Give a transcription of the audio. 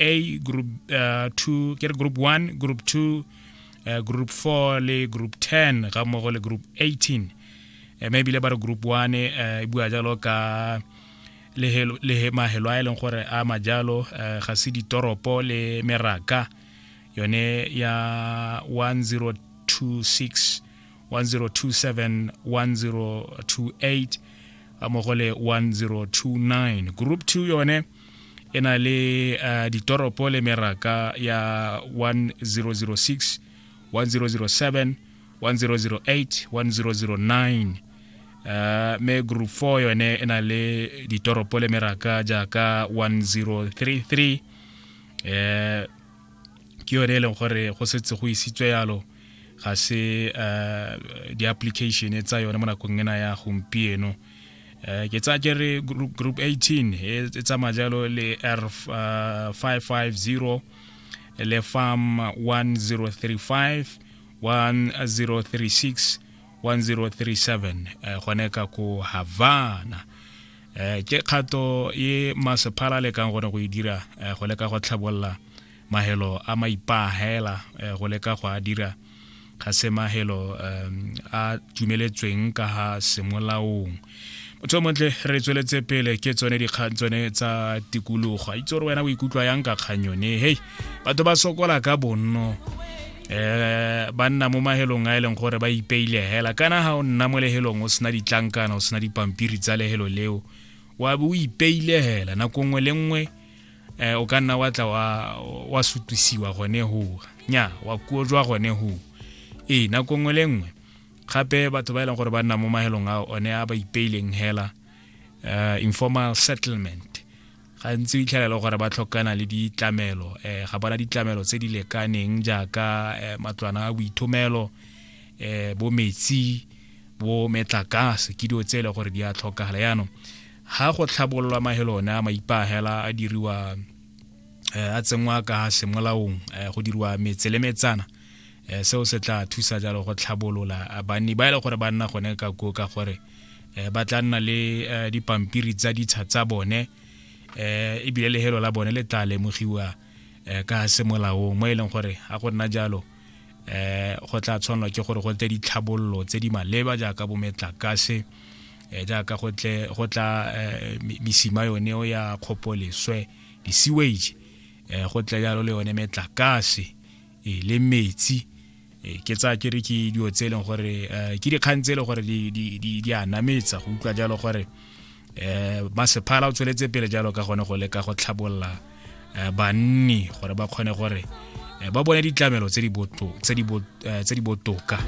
a group uh, two ke re group one group two uh, group four le group ten ga mmogo le group eighteen uh, mme ebile ba re group one uh, e bua jalo ka le mahelo a e leng gore a majalo uh, ga se ditoropo le meraka yone ya 1026 1027 1028 mmogo le 1029 group 2 yone e na le uh, ditoropo le meraka ya 1006 1007 1008 1009 uh, me group 4 yone e na le ditoropo le meraka jaaka 1033 eh ke yone e leng gore go setse go isitswe yalo ga se uh, di-application tsa yone mo nakong ena ya gompieno uh, Eh, ke tsa kere group 18 e, e tsamaya jalo le r 550 uh, le farm 1035 1036 1037 gone ka ko havana eh, ke kgato ye masephala lekang gone go e dira eh, go leka go tlhabolola mahelo a maipaahela eh, go leka go a dira ga se mahelo a dumeletsweng ka ga semolaong motho o montle re tsweletse pele ke tsone dikgang tsone tsa tikologo a itse gore wena o ikutlwa yang ka kgang yone hei batho ba sokola ka bonno eh ba nna mo mahelong a e leng gore ba ipeile hela kana ha o nna mo lehelong o sena ditlankana o sena dipampiri tsa lehelo leo wa bo o ipeile hela nako nngwe le nngwe eh o ka nna wa tla wa wa sutisiwa gone ho nya wa kuo jwa gone ho e na kongwe le nngwe gape batho ba e leng gore ba nna mo mahelong a one a ba ipeileng hela uh, informal settlement gantsi o itlhelela e gore ba tlhokana le ditlamelo eh ga bona ditlamelo tse di lekaneng jaaka eh, matlwana a boithomelo eh bo metsi bo metlakase ke dio tse e le gore di a tlhokagala yaanong Ha go tlhabololwa mahelo one a maipahela a diriwa eh, a tsenngwa ka semolaong eh, go diriwa metse le metsana eh, seo se tla thusa jalo go tlhabolola banni ba e le gore ba nna gone ka koo ka gore ba tla nna le dipampiri tsa ditsha tsa bone eh ebile lehelo la bone le tla lemogiwa eh, ka semolaong mo e leng gore a go nna jalo eh go tla tshwanelwa ke gore go tle ditlhabololo tse di maleba jaaka bometlakase eh jaaka go tle go tla eh, misima yone o ya kgopoleswe di-sewage eh go tle jalo le yone metlakase eh, le metsi eh, ke tsa ke re ke dilo tse e leng gore eh, ke dikgang tse e leng gore di a nametsa go utlwa jalo gore eh masephala o tsweletse pele jalo ka gone go leka go tlhabolola eh, banni gore ba kgone gore eh, ba bone ditlamelo tse di eh, botoka